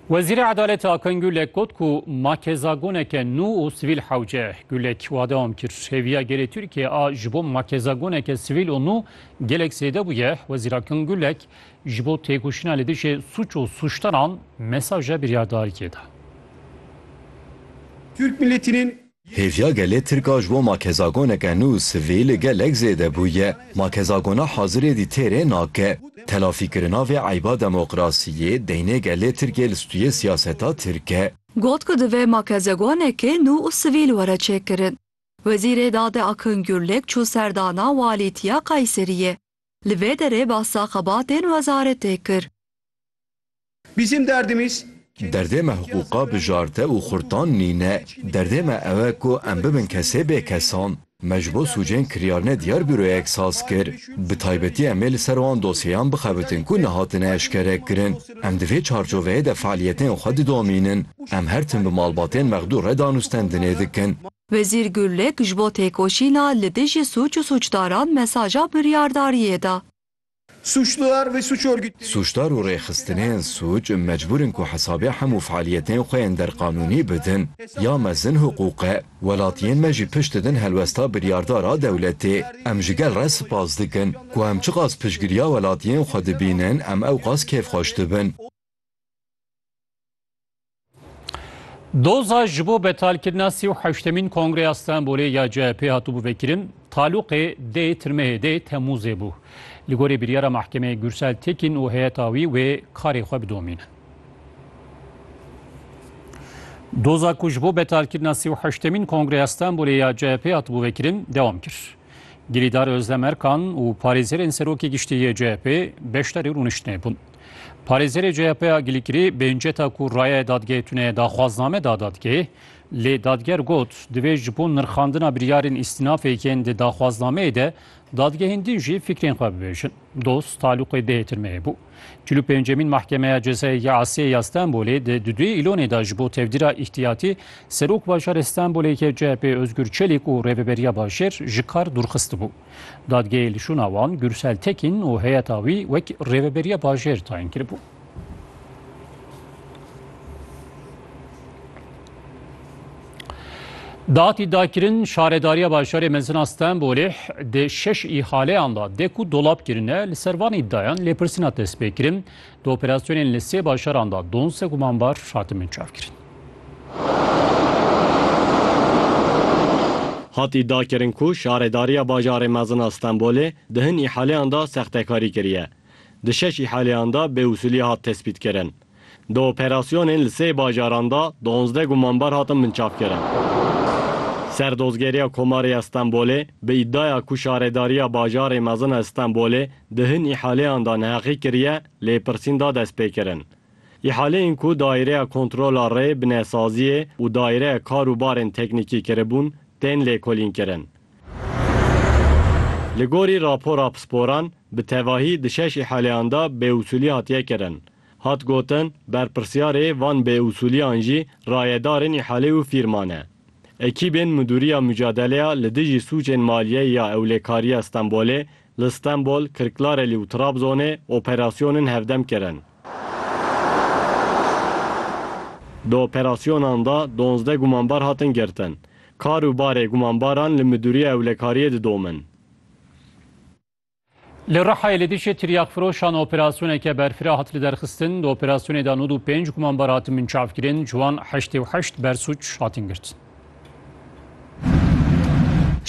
Wezîrê Edaletê Akın Gülek got ku ma kezagoneke nû û sivîl hewce. Gülek wa dewam kir, Hêviya gelê Tirkiyê a ji bo ma kezagoneke sivîl û nû gelek zêde bûye. Wezîr Akın Gülek ji bo têkoşîna li dijî sûc û sûcdaran mesaja biryardariyê da. Türk milletinin Hêviya gelê Tirk a ji bo makezagoneke nû sivî li gelek zêde bûye. Makezagona hazirê dî têrê nake. Telafîkirina vê eyba demokrasiyê deynê gelê Tirkê li stûyê siyaseta Tirk e. Got ku divê makezegoneke nû û sivîl were çêkirin. Wezîrê Dadê Akın Gürlek çû serdana walîtiya Kayseriyê. Li vê derê basa xebatên wezaretê kir. Bizim derdimiz Derdê me hiqûqa bijarte û xurtan nîne. Derdê me ew e ku em bibin kesê bêkesan. Me ji bo sûcên kiryarine diyar Büroyek saz kir. Bi taybetî em ê li ser wan dosyeyan bixebitin ku nehatine eşkerekirin. Em di vê çarçoveyê de fealiyetên xwe didomînin. Em her tim bi malbatên mexdûr re danûstendinê dikin. Wezîr Gurlik ji bo têkoşîna li dijî sûc û sûcdaran mesaja biryardariyê da. Sûcdar ve sûc örgütleri. Sûcdar û rêxistinên sûc mecbûr in ku hesabê hemû fealiyetên xwe yên derqanûnî bidin. Ya mezin hiqûq e. Welatiyên me jî pişt didin helwesta biryardar a dewletê. Em ji gel re spas dikin. Ku em çiqas piştgiriya welatiyên xwe dibînin em ewqas kêfxweş dibin. Doza ji bo betalkirina sî û heştemîn Kongreya Stenbolê ya CHP hatû bivekirin, talûqê dê tirmehê dê Temmûzê bû. Li gorî biryara mehkemeyê Gursel Tekîn û heyeta wî wê karê xwe bidomînin. Doza ku ji bo betalkirina sî û heştemîn Kongreya Stenbolê ya CHP hatû bivekirin dewam kir. Girîdar Özlem Erkan û parêzerên serokê giştî yê CHP beşdarî rûniştinê bûn. Parêzerê CHP'ya Gilîkirî bênceta ku rayeyê dadgehê tune daxwazname da dadgehê, lê dadger got divê ji bo nirxandina biryarên îstînafê yên di daxwaznameyê de dadgehên din jî fikrên xwe bibêjin. Doz talûqê dehê tirmeyê bû. Çil û pêncemîn Mahkemeya Cezayê ya Asiyê ya Stenbolê di di duyê îlonê de ji bo tevdîra îhtiyatî Serok Bajarê Stenbolê yê CHP'ê Ozgur Çelîk û Rêveberiya Bajêr ji kar dûrxistibû. Dadgehê li şûna wan Gürsel Tekîn û heyeta wî wek rêveberiya bajêr tayin kiribû. Datî dakirin şaredariya bajarê mezina Stenbolê di şeş îhaleyan da dek û dolap kirine li ser van îddayan lêpirsîna destpêkirin di operasyonên li sê bajaran da donse gumanbar hatimin çavkirin. Hatî dakirin ku Şaredariya Bajarê Mezin a Stenbolê di hin îhaleyan de sextekarî kiriye. Di şeş îhaleyan de bêusûlî hat tespîtkirin. Di operasyonên li sê bajaran de duanzdeh gumanber hatin binçavkirin. Ser Dozgeriya Komarê ya Stenbolê bi îdaya ku Şaredariya Bajarê Mezin a Stenbolê di hin îhaleyan de neheqî kiriye lêpirsîn da destpêkirin. Îhaleyên ku Daîreya Kontrola Rê bi nesaziyê û Daîreya Kar û Barên Teknîkî kiribûn, tên lêkolînkirin. Li gorî rapora pisporan, bi tevahî di şeş îhaleyan de bêusûlî hatiye kirin. Hat gotin, berpirsyarê van bêusûliyan jî rayedarên îhalê û fîrma ne. Ekîbên Midûriya Mucadeleya li dijî sûcên maliyeyê ya Ewlêkariya Stenbolê Li Stenbol, Kirklarelî û Trabzonê operasyonên hevdem kirin. Di operasyonan de donzdeh gumanbar hatin girtin. Kar û barê gumanbaran li Midûriya Ewlekariyê didomin. Li Rihayê li dijî tiryakfiroşan operasyoneke berfireh hat liderxistin. Di operasyonê de nod û pênc gumanbar hatin binçavkirin, ji wan heştê û heşt bersuc hatin girtin.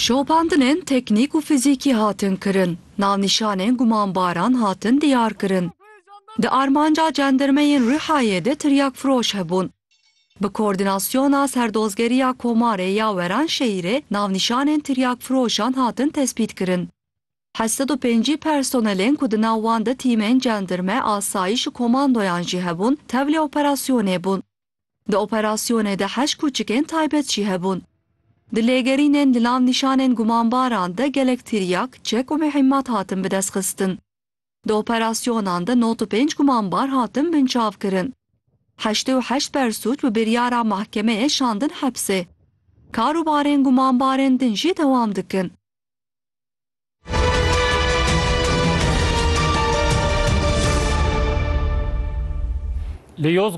Şopandinên teknîk û fizîkî hatin kirin, navnîşanên gumanbaran hatin diyarkirin. Di armanca cendirmeyên Rihayê de tiryakfiroş hebûn. Bi Koordînasyona Serdozgeriya Komarê ya Weranşehîrê navnîşanên tiryakfiroşan hatin tespîtkirin. Heşt sed û pêncî personelên ku di nav wan de tîmên cendirme, asayîş û komandoyan jî hebûn, tevlî operasyonê bûn. Di operasyonê de heşt kûçikên taybet jî hebûn. Di lêgerînên li nav nîşanên gumanbaran de gelek tiryak, çek û mihîmmat hatin bidestxistin. Di operasyonan de nod û pênc gumanbar hatin binçavkirin. Heştê û heşt bersûc bi biryara mahkemeyê şandin hepsê. Kar û barên gumanbarên din jî dewam dikin. Li Yozgatê